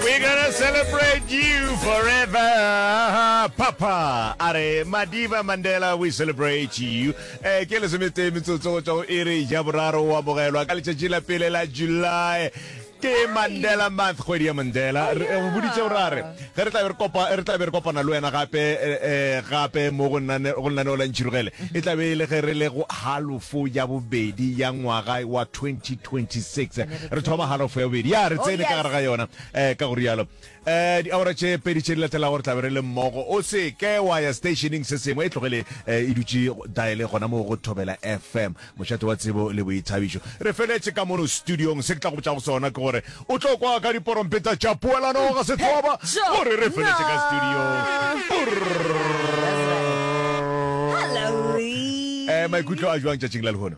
We're gonna celebrate you forever. Papa, are Madiba Mandela, we celebrate you. Eh, ke le somete metsotso go tswa go iri ja boraro wa bogelwa ka letšatši la pele la July ke mandela month kgwedi ya mandela re eh, boditse o rare ge re tlabe re kopa re tlabe re kopana le wena gape eh, eh, gape mo go nnane go nnane o lantšhirogele e tlabe e le ge re le go halofo ya bobedi ya ngwaga wa 2026 re thoma halofo ya bobedi ya re oh, tsene ka gare ga yona um ka go rialo um diaora tše pedi tše di latelago re tlabe re le mmogo o se ke wa ya stationing se sengwe e tlogele um e dutse diale gona mo go thobela fm mošate wa tsebo le boithabišo re feletse ka mono studiong se ke tla go botsa go sona ke gore o tlo kwa ka diporompeta tša puelano ga sethoba gore re feletse ka studiong um maikutlo a jwang tšatšing la lehono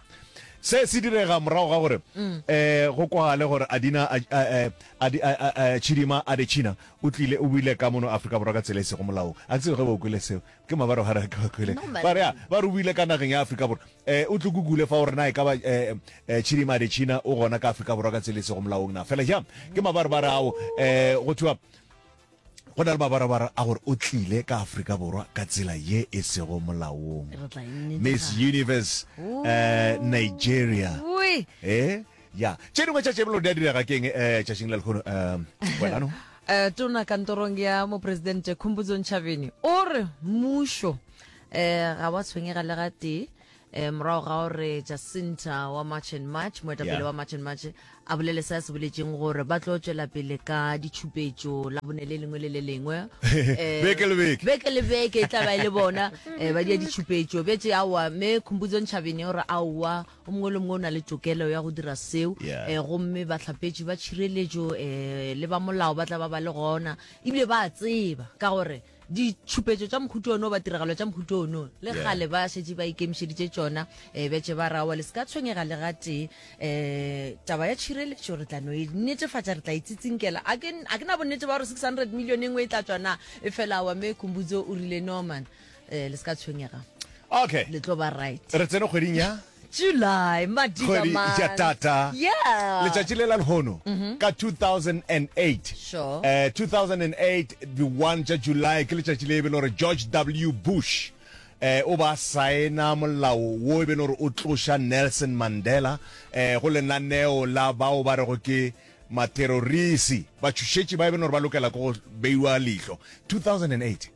se se direga morago ga gore um go kwagale gore adina chidima a dechina o tlile o buile ka mono aforika borwa ka tsela e sego molaong a ke tsebe ge ba kwele seo ke mabaro gare ke ba kwele ba re ba re o buile ka nageng ya aforika borwa um o tlo kukule fa gore na e ka ba um chidima a dechina o gona ka aforika borwa ka tsela e sego molaong na fela jang ke mabaro ba re ao um go thiwa go na le mabarabara a gore o tlile ka aforika borwa ka tsela ye e sego molaong miss universe um nigeria e ya tše dingwe tša tšebelo di a direga keng um eh, tšatšing la lekgono um eh, welano um tona kantorong ya moporesidente khompotsong tšhabeni o re mmušo um ga wa tshwenyega le ga tee eh, morago ga gore jacinta wa march and march moetapele yeah. wa march and march a bolele se a se boletseng gore ba tlo tswela pele ka ditšhupetso la bone le lengwe le le lengwe eh, beke le beke beke le beke e tla ba e le bona eh, ba dia ditšhupetso betse aowa mme khumpudzo ntšhabene gore aowa o mongwe le mongwe o na le tokelo ya go dira seo yeah. eh, gomme batlhapetši ba tšhireletso eh, le ba molao ba tla ba ba le gona ebile ba tseba ka gore ditšhupetso tša mohuto ono ba tiragalo tša mohuto ono le gale ba šetše ba ikemišeditše tšona um eh, betše ba rawa le se ka tshwenyega le gatee um eh, taba ya tšhireletšo re tla no e netefatša re tla itsetsinkela a ke na bonnete ba gore six hundred million e nngwe e tla tswana e fela wa me kumbudzo o rile norman um eh, le se ka tshwenyega okay le tlo ba right re tsene kgweding ya July, madiba Kgwedi ya man. tata. Yeah. Letšatši le la lehono ka 2008. Sure. Eh, 2008 the 1 tša July ke letšatši le e be le gore George W Bush eh o ba saena molao wo e be le gore o tloša Nelson Mandela eh go lenaneo la bao ba rego ke materorisi batšhošetši ba e be le gore ba lokela ke go beiwa leihlo 2008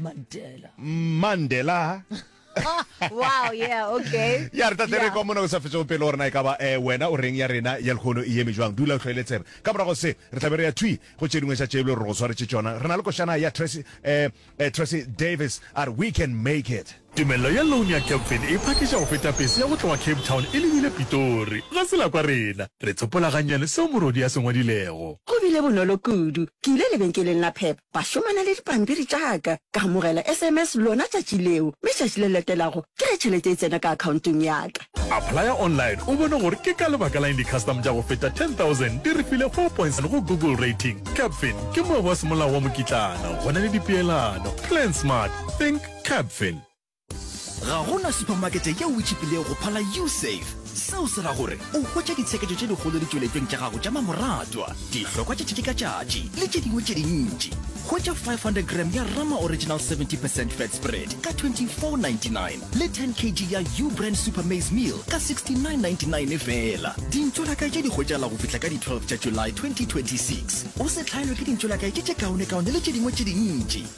Mandela. Mandela. wow yeah okay ya re tatlere kwa mona go sa fetsa go pele gore na e ka ba eh, wena o reng ya rena ya lekgono e eme jwang dula o tlhoele tsebe ka morago se re tlabe re ya thui go tše dingwe tša tšebile gore go tshwaretse tsona re na le košana ya tracy eh, eh, tracy davis a re we can make it Tumello ya loan ya Capfin e phakiša go feta pese ya go tloga Cape Town e lebile Pitori. Ga se la kwa rena. Re tsopola gannyane seo morwodi a se ngwadilego. Go bile bonolo kudu. Ke ile lebenkeleng la Pep, ba šomana le dipampiri tša ka. Ka amogela sms lona tšatši leo, mme tšatši le latelago ke ge tšhelete e tsena ka akhaontong ya ka. Applya online o bone gore ke ka lebaka la eng di-custom tša go feta 10,000 di re file four point seven go Google Rating. Capfin ke moabi wa semolao wa mokitlana, go na le dipeelano, Plan Smart, Think, Capfin. Ga go na supamakete yeo e tšhipilego go phala Usave. Seo se ra gore o hwetša ditsheketšo tše dikgolo ditšweletšong tša gago tša mamoratwa, dihlokwa tša tšatši ka tšatši le tše dingwe tše dintši. Hwetša 500 gram ya Rama Original 70 percent Fat Spread ka 24.99 le 10 kg ya Ubrand Super Maize Meal ka 69.99 feela. Dintšwelakae tše di hwetšagala go fihla ka di 12 tša July 2026. O se hlaelwe ke dintšwelakae tše tše kaonekaone le tše dingwe tše dintši.